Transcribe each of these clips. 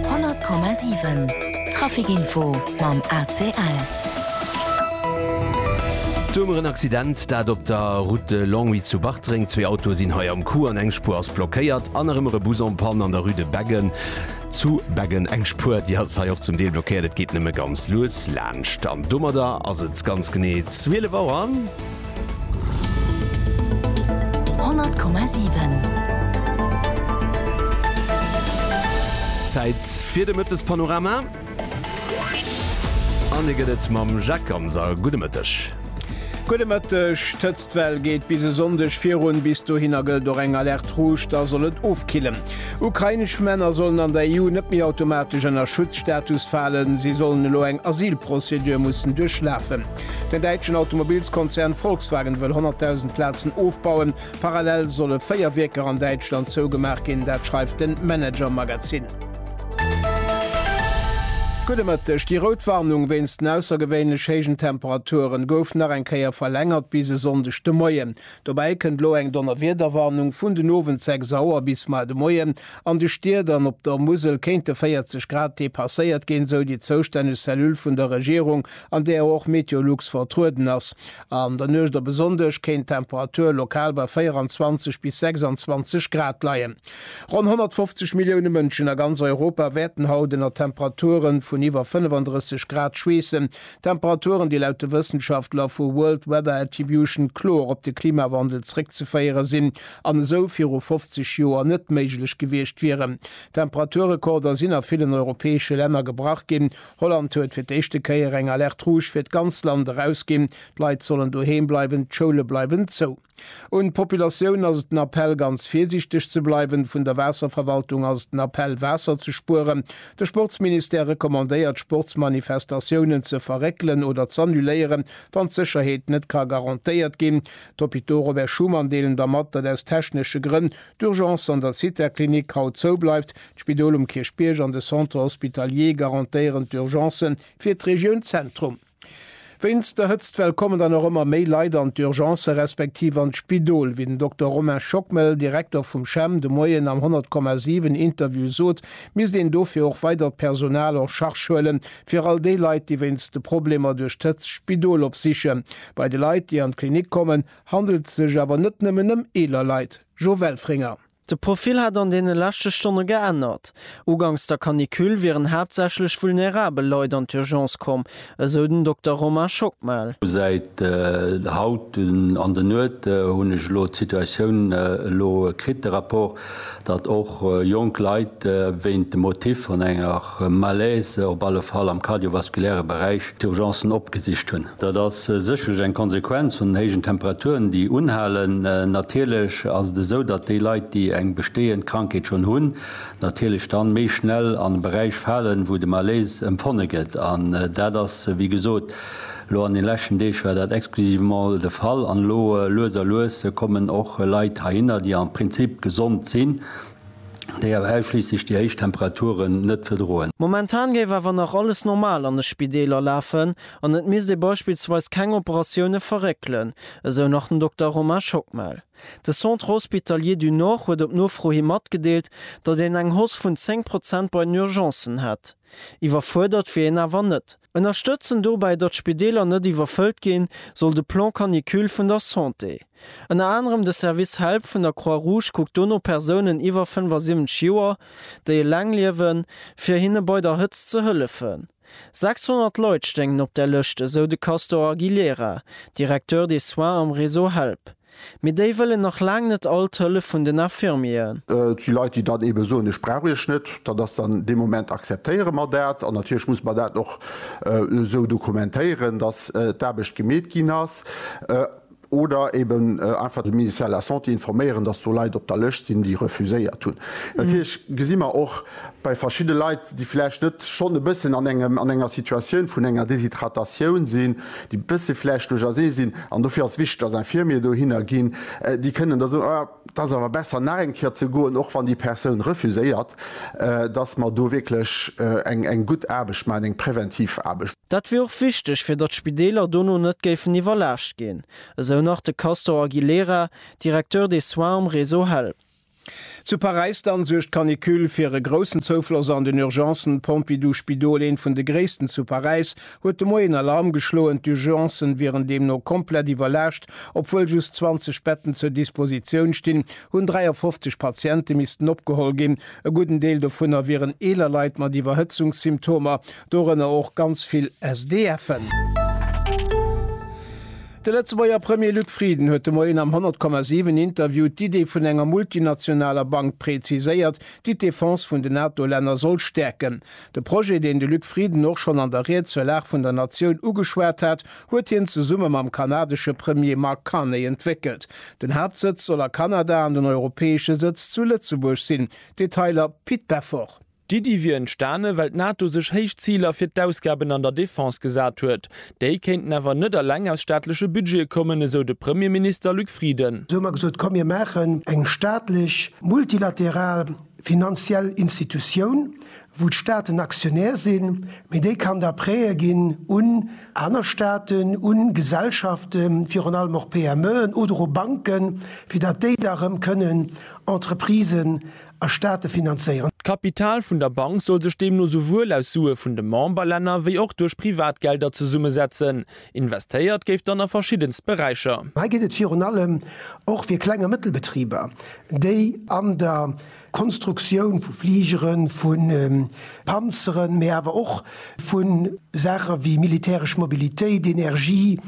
100,7 Trafic Info mam ACL. D'Wuermer, en Accident dat op der Route de Longwy zu Bartreng. Zwee Autoe sinn hei am Coup an eng Spuer ass blockéiert. An nach ëmmer e Bus en Panne an der Rue de Beggen zu Beggen. Eng Spuer déi ass hei och zum Deel blockéiert, et geet nëmme ganz lues laanscht. An domadder ass et ganz genee 12 Auer. Zäit fir de Mëttespanorama an e gëtt et mam Jacques Ganser. Gudde Mëtteg. Gudde Mëtteg. D'Hëtztwell geet bis e Sonndeg virun. Bis dohinner gëllt och eng Alerte rouge, da soll et ofkillen. Ukrainesch Männer sollen an der EU net méi automatesch ënner Schutzstatus falen. Si sollen elo eng Asylprozedur mussen duerchlafen. Den däitschen Automobilskonzern Volkswagen wëll 100.000 Plazen ofbauen. Parallel solle véier Wierker an Däitschland zougemaach ginn, dat schreift de Manager Magazin. Gudde Mëtteg, Déi rout Warnung wéinst den aussergewéinlech héijen Temperaturen gouf nach eng Kéier verlängert bis e Sonndeg de Moien. Dobäi kënnt elo eng Donnerwiederwarnung vun den Owend 6 Auer bis mar de Moien. An de Stied an op der Musel kéinte 40 Grad depasséiert ginn, sou déi zoustänneg Cellule vun der Regierung. an där och Meteolux vertrueden ass. An der Nuecht op e Sonndeg kéint d'Temperatur lokal bei 24 bis 26 Grad leien. Ronn 150 Millioune Mënschen a ganz Europa wäerten haut ënner Temperature vun iwwer 35 Grad schweessen, Temperaturen, déi laut de Wëssenschaftler vu World Weather Attribution kloer op de Klimawandel zréckzeféiere sinn an esou viru 50 Joer net méiglech gewiescht wieren. Temperaturrekorder sinn a villen europäesche Länner gebrach ginn. Holland huet fir d'éischte Kéier eng Alerte rouge fir d'ganz Land erausginn. D'Leit sollen doheem bleiwen, d'Schoule bleiwen zou. Un d'Populatioun ass et den Appell, ganz virsiichteg ze bleiwen. Vun der Waasserverwaltung ass et den Appell, Waasser ze spueren. De Sportsministère recommandéiert, Sportsmanifestatiounen ze verréckelen oder z'annuléieren, wann d'Sécherheet net ka garantéiert ginn. D'Hôpitaux Robert Schuman deelen da mat, datt aus technesche Grënn d'Urgence an der Zithaklinik haut zou bleift, D'Spidol um Kierchbierg an de Centre hospitalier garantéieren d'Urgence fir d'Regioun Zentrum. Wéinst der Hëtztwell kommen dann och ëmmer méi Leit an d'Urgence respektiv an d'Spidol. Wéi den Dokter Romain Schockmel, Direkter vum CHEM, de Moien am 100,7 Interview sot, misst een dofir och weidert Personal en Charge huelen, fir all déi Leit, déi wéinst de Problemer duerch d'Hëtzt d'Spidol opsichen. Bei de Leit, déi an d'Klinik kommen, handelt et sech awer net nëmmen ëm eeler Leit. Jo Welfringer. De Profil hätt an deene leschte Stonne geännert. Uganks der Canicule wieren haaptsächlech vulnerabel Leit an d'Urgence komm, esou den Dokter Romain Schockmel. Säit haut an de Nuet hunn ech elo d'Situatioun elo kritt, de Rapport, datt och jonk Leit wéint dem Motiv vun enger Malaise, op alle Fall am kardiovaskuläre Beräich, d'Urgencen opgesicht hunn. Dat ass sécherlech eng Konsequenz vun den héijen Temperaturen, déi unhalen. Natierlech ass et esou, datt déi Leit, déi eng bestehend Krankheet schonn hunn, natierlech dann méi schnell an e Beräich falen, wou de Malaise empfonne gëtt. An dat ass, wéi gesot, elo an den leschten Deeg war dat exclusivement de Fall. An elo lues a lues kommen och Leit heihinner, déi am Prinzip gesond sinn, déi awer ausschliisslech déi héich Temperaturen net verdroen. Momentan géif awer nach alles normal an de Spideeler lafen an et misst ee beispillsweis keng Operatioune verréckelen, esou nach den Dokter Romain Schockmel. De Centre Hospitalier du Nord huet op Nofro hi matgedeelt, datt een eng Hausse vun 10 Prozent bei den Urgencen hätt. Iwwerfuerdert wier een awer net. Ënnerstëtzen dobäi, datt d'Spideeler net iwwerfëllt ginn, soll de Plan Canicule vun der Santé. Ënner anerem de Service Help vun der Croix Rouge kuckt do no Persounen iwwer 75 Joer, déi eleng liewen, fir hinne bei der Hëtzt ze hëllefen. 600 Leit stéingen op där Lëscht, esou de Castor Aguilera, Directeur des soins am Réseau Help. Mee déi wëllen nach laang net all d'Hëllef vun den Infirmieren. Et si Leit, déi dann eebe soen, ech brauch Iech net. Dat ass dann dee Moment, akzeptéiere mer dat. An natierlech musse mer dat och esou dokumentéieren, datt d'Aarbecht gemeet ginn ass. Oder eeben einfach de Ministère de la Santé informéieren, datt do Leit op der Lëscht sinn, déi refuséiert hunn. Natierlech gesi mer och, Bei verschidde Leit, déi vläicht net schonn e bëssen an engem an enger Situatioun vun enger Deshydratatioun sinn, déi bësse vläicht duerchersee sinn, an dofir ass wichteg, dass Infirmiere dohinner ginn, déi kënnen da soen, ah, et ass awer besser nach eng Kéier ze goen, och wann déi Persoun refuséiert, dass mer do wierklech eng gutt Aarbecht maachen, eng präventiv Aarbecht. Dat wier och wichteg, fir datt d'Spideeler dono net géifen iwwerlaascht ginn, esou nach de Castor Aguilera, Directeur des soins um Réseau Help. Zu Paräis dann suergt d'Canicule fir e groussen Zoufloss an den Urgencen. D'Pompidou Spidol, eent vun de gréissten zu Paräis, huet de Moien Alarm geschloen. D'Urgencen wieren deemno komplett iwwerlaascht. Obwuel just 20 Betten zur Dispositioun stinn, hunn 53 Patiente missten opgeholl ginn. E gudden Deel dovunner wieren eeler Leit mat Iwwerhëtzungssymptomer, dorënner och ganz vill SDF'en. De Lëtzebuerger Premier Luc Frieden huet de Moien am 100,7 Interview d'Idee vun enger multinationaler Bank preziséiert, déi d'Defense vun den NATO-Länner soll stäerken. De Projet, deen de Luc Frieden och schonn an der Ried zur Lag vun der Natioun ugeschwat hat, huet hien zesumme mam kanadesche Premier Mark Carney entwéckelt. Den Haaptsëtz soll a Kanada an den europäesche Sëtz zu Lëtzebuerg sinn. Detailer Pit Beffort. D'Iddi wier entstane well d'NATO sech héich Ziler fir d'Ausgaben an der Defense gesat huet. Déi kéinten awer net eleng aus staatleche Budgete kommen, esou de Premierminister Luc Frieden. Esou hu mer gesot, komm mir maachen eng staatlech multilateral finanziell Institutioun, wou d'Staaten Aktionär sinn, mee déi kann da Prêtë ginn un aner Staaten, u Gesellschaften, virun allem och PMEen oder u Banken, fir datt déi da erëm kënnen Entreprisen a Staate finanzéieren. D'Kapital vun der Bank soll sech deemno souwuel aus Sue vun de Memberlänner wéi och duerch Privatgelder zesummesetzen. Investéiert géif dann a verschiddenst Beräicher. Hei geet et virun allem och fir Kleng a Mëttelbetriber, déi an der Konstruktioun vu Fligeren, vu Panzeren, mee awer och vu Saache wéi militäresch Mobilitéit, Energie,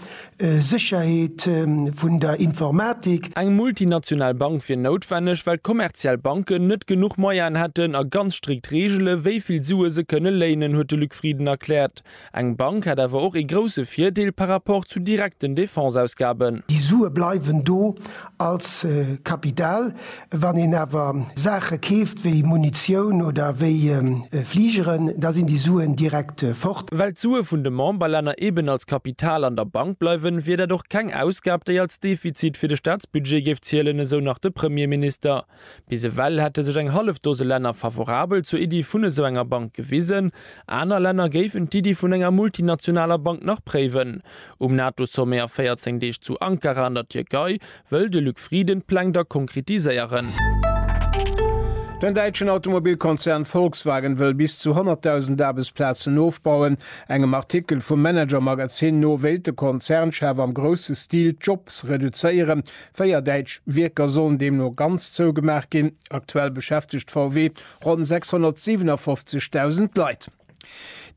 Sécherheet, vun der Informatik. Eng multinational Bank wier noutwenneg, well kommerziell Banken net genuch Moyaen hätten a ganz strikt Reegele wéi vill Sue se kënne léinen, huet de Luc Frieden erkläert. Eng Bank hätt awer och ee grousse Virdeel par rapport zu direkten Defense-Ausgaben. Déi Sue bleiwen do Als Kapital. Wann een awer Saache keeft wéi Munitioun oder wéi Fligeren, da sinn déi Suen direkt fort. Well d'Sue vun de Memberlänner eeben als Kapital an der Bank bleiwen, wier dat och keng Ausgab, déi als Defizit fir de Staatsbudget géif zielen, esou nach de Premierminister. Bis ewell hätte sech eng hallef Dose Länner favorabel zur Iddi vun esou enger Bank gewisen. Aner Länner géifen d'Iddi vun enger multinationaler Bank nach préiwen. Um NATO-Sommet a 14 Deeg zu Ankara an der Tierkei wëll de Luc Frieden d'Pläng da konkretiséieren. Den däitschen Automobilkonzern Volkswagen wëll bis zu 100.000 Aarbechtsplazen ofbauen. Engem Artikel vum Manager-Magazin no wéilt de Konzernchef am grousse Stil d'Jobs reduzéieren, Véier däitsch Wierker sollen deemno ganz zougemaach ginn. Aktuell beschäftegt VW ronn 657.000 Leit.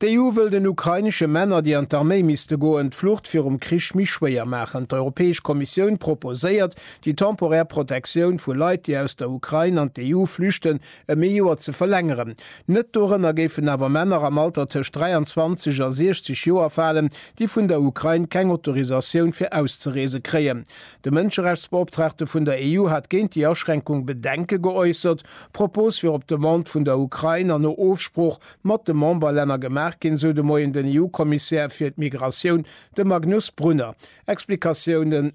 D'EU wëll den ukrainesche Männer, déi an d'Arméi misste goen, d'Flucht virum Krich méi schwéier maachen. D'Europäesch Kommissioun proposéiert, déi temporär Protektioun vu Leit, déi aus der Ukrain an d'EU flüchten, ëm ee Joer ze verlängeren. Net dorënner géifen awer Männer am Alter tëscht 23 a 60 Joer falen, déi vun der Ukrain keng Autorisatioun fir auszereese kréien. De Mënscherechtsbeoptraagte vun der EU hat géint déi Aschränkung Bedenke geäussert. D'Propos wier op Demande vun der Ukrain an no Ofsprooch mat de Memberlänner gemaach ginn, sou de Moien den EU-Kommissär fir d'Migratioun, de Magnus Brunner. Explikatiounen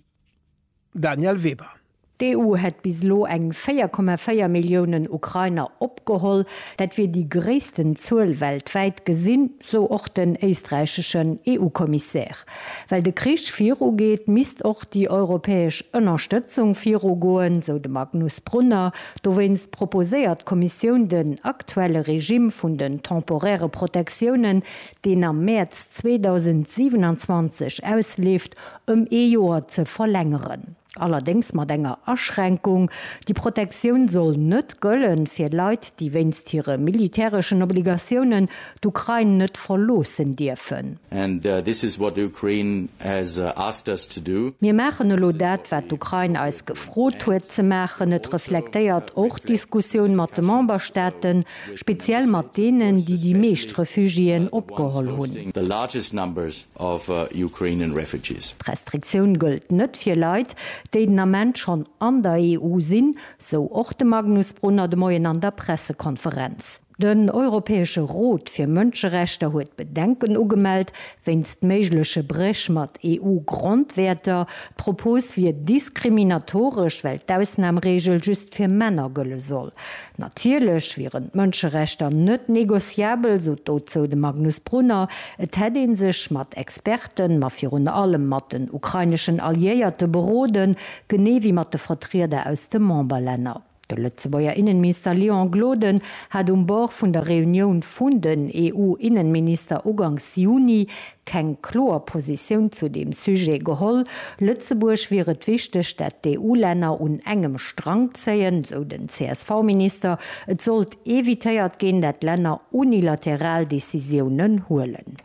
Danièle Weber. D'EU hätt bis elo eng 4,4 Milliounen Ukrainer opgeholl. Dat wier déi gréissten Zuel weltwäit, gesinn, sou och den éisträicheschen EU-Kommissär. Well de Krich viru geet, misst och déi europäesch Ënnerstëtzung viru goen, sou de Magnus Brunner. Dowéinst proposéiert d'Kommissioun den aktuelle Regime vun den temporäre Protectiounen, deen am Mäerz 2027 ausleeft, ëm ee Joer ze verlängeren. Allerdéngs mat enger Aschränkung, Déi Protektioun soll net gëllen, fir Leit, déi wéinst hire militäreschen Obligatiounen d'Ukrain net verloossen dierfen. And this is what Ukraine has asked us to do. Mir maachen elo dat, wat d'Ukrain eis gefrot huet ze maachen. Et reflektéiert och d'Diskussioun mat de Memberstaaten, speziell mat deenen, déi déi meescht Refugiéen opgeholl hunn. of Ukrainian refugees. D'Restriktioun gëllt net fir Leit, déi den Ament schonn an der EU sinn, sou och de Magnus Brunner de Moien an der Pressekonferenz. Den Europäesche Rot fir Mënscherechter huet Bedenken ugemellt wéinst méigleche Bréch mat EU-Grondwäerter. D'Propos wier diskriminatoresch, well d'Ausnamregel just fir Männer gëlle soll. Natierlech wieren d'Mënscherechter net négociabel, sot dozou de Magnus Brunner. Et hätt ee sech mat Experten, ma virun allem mat den ukraineschen Alliéierte beroden, genee wéi mat de Vertrieder aus de Memberlänner. De Lëtzebuerger Innenminister Léon Gloden hat um Bord vun der Reunioun vun den EU-Innenminister ugangs Juni keng kloer Positioun zu deem Sujet geholl. Lëtzebuerg wier et wichteg, dat d'EU-Länner un engem Strang zéien, esou den CSV-Minister. Et sollt evitéiert ginn, dat Länner unilateral Decisiounen huelen.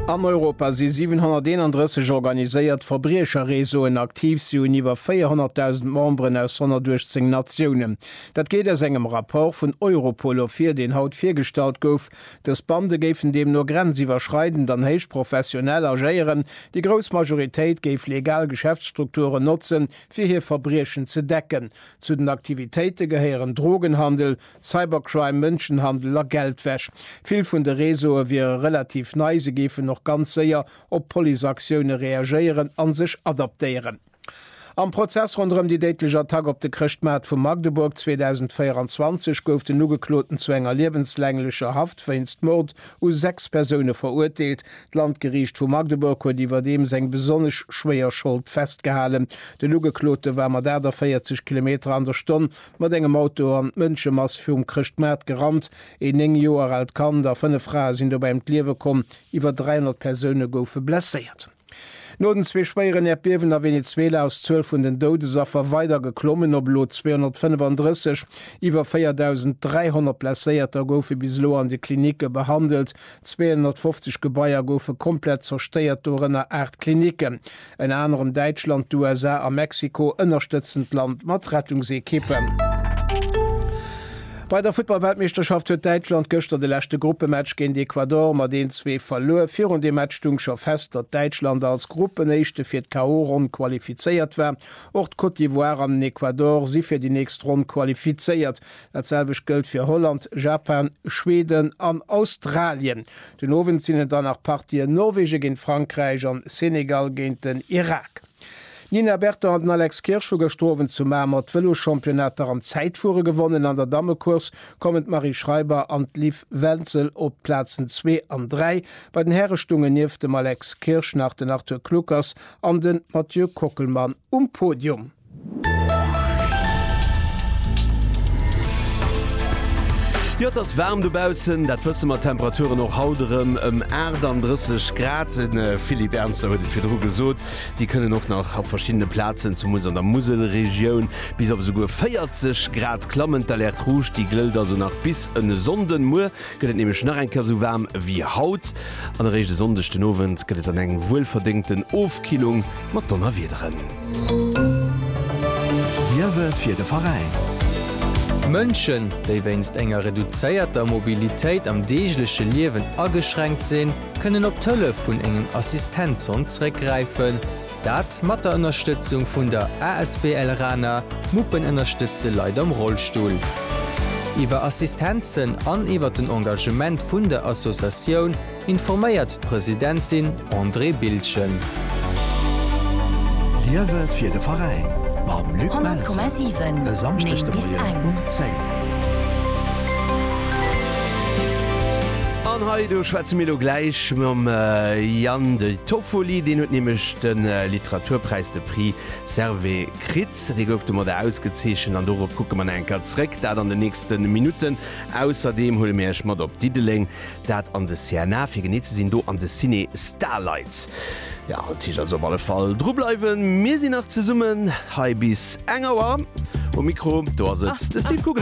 An Europa si 731 organiséiert Verbriecherreseauen aktiv. Si hunn iwwer 400.000 Memberen aus 118 Natiounen. Dat geet aus engem Rapport vun Europol ervir, deen haut virgestallt gouf. Dës Bande géifen deemno grenziwwerschreidend an héich professionell agéieren. Déi grouss Majoritéit géif legal Geschäftsstrukturen notzen, fir hir Verbriechen ze decken. Zu den Aktivitéite gehéieren Drogenhandel, Cybercrime, Mënschenhandel a Geldwäsch. Vill vun de Réseaue wiere relativ nei, se géifen och ganz séier op Policeaktioune reagéieren a sech adaptéieren. Am Prozess ronderëm déi déidlech Attack op de Chrëschtmaart vu Magdeburg 2024 gouf den Ugekloten zu enger liewenslaenglecher Haft wéinst Mord u sechs Persoune verurteelt. D'Landgeriicht vu Magdeburg huet iwwerdeems eng besonnesch schwéier Schold festgehalen. Den Ugeklote war mat 48 Kilometer an der Stonn mat engem Auto an d'Mënschemass virum Chrëschtmaart gerannt. Een néng Joer aalt Kand a fënnef Frae sinn dobäi ëm d'Liewe komm, iwwer 300 Persoune goufe blesséiert. No den zwee schwéieren Äerdbiewen a Venezuela ass d'Zuel vun den Doudesaffer weider geklommen op elo 235. Iwwer 4.300 Blesséierter goufe bis elo an de Klinicke behandelt. 250 Gebaier goufe komplett zerstéiert, dorënner aacht Klinicken. Ënner anerem Däitschland, d'USA a Mexiko ënnerstëtzen d'Land mat Rettungsekippen. Bei der Futtballweltmeeschterschaft huet Däitschland gëschter de leschte Gruppematch géint Ecuador mat 1-zwee verluer. Virun deem Match stung scho fest, datt Däitschland als Gruppenéischte fir d'KO-Ronn qualifizéiert war. Och d'Côte d'Ivoire an den Ecuador si fir déi nächst Ronn qualifizéiert. Dat selwecht gëllt fir Holland, Japan, Schweden an Australien. Den Owend sinn et dann nach Partien, Norwegen géint Frankräich an Senegal géint den Irak. D'Nina Berton an den Alex Kirsch hu gëschter Owend zu Mamer d'Vëloschampionnater am Zäitfuere gewonnen. An der Dammecourse kommen d'Marie Schreiber an d'Liv Wenzel op d'Plazen zwee an dräi. Bei den Häre stoungen nieft dem Alex Kirsch nach den Arthur Kluckers an de Mathieu Kockelmann um Podium. Jo, et ass waarm dobaussen, dat wësse mer. D'Temperaturen och haut erëm ëm 38 Grad. De Philippe Ernster huet et virdru gesot, déi kënnen och nach op verschiddene Plazen, zumools an der Muselregioun, bis op esouguer 40 Grad klammen. D'Alerte rouge, déi glëllt also nach bis en e Sonnden. Muer gëtt et nämlech nach eng Kéier esou waarm wéi haut an eréischt e Sonndeg den Owend gëtt et dann eng wuelverdéngten Ofkillung mat Donnerwiederen. Liewe fir de Veräin. Mënschen, déi wéinst enger reduzéierter Mobilitéit am deegleche Liewen ageschränkt sinn, kënnen op d'Hëllef vun engem Assistenzhond zréckgräifen, Dat mat der Ënnerstëtzung vun der asbl Rana, Muppen ënnerstëtze Leit am Rollstull. Iwwer Assistenzen an iwwer den Engagement vun der Associatioun informéiert d'Presidentin Andrée Bildgen. Liewe fir de Veräin mam Luc Melzer e Samschdeg de Moien um 10. An hei do schwätze mir elo gläich mam Yann de. Toffoli, deen huet nämlech de Literaturpräis, de Prix Servais, kritt. Dee gouf domat ausgezeechent an dorop kucke mer nach eng Kéier zréck, dat an den nächste Minutten. Ausserdeem huele mir Iech mat op Diddeleng, dat an de CNA, fir genee ze sinn, do an de Ciné Starlight. Jo, dat heescht also op alle Fall dru bleiwen. Mir sinn nach zesummen hei bis eng Auer. Um Mikro, do ass et de Steve Kugel.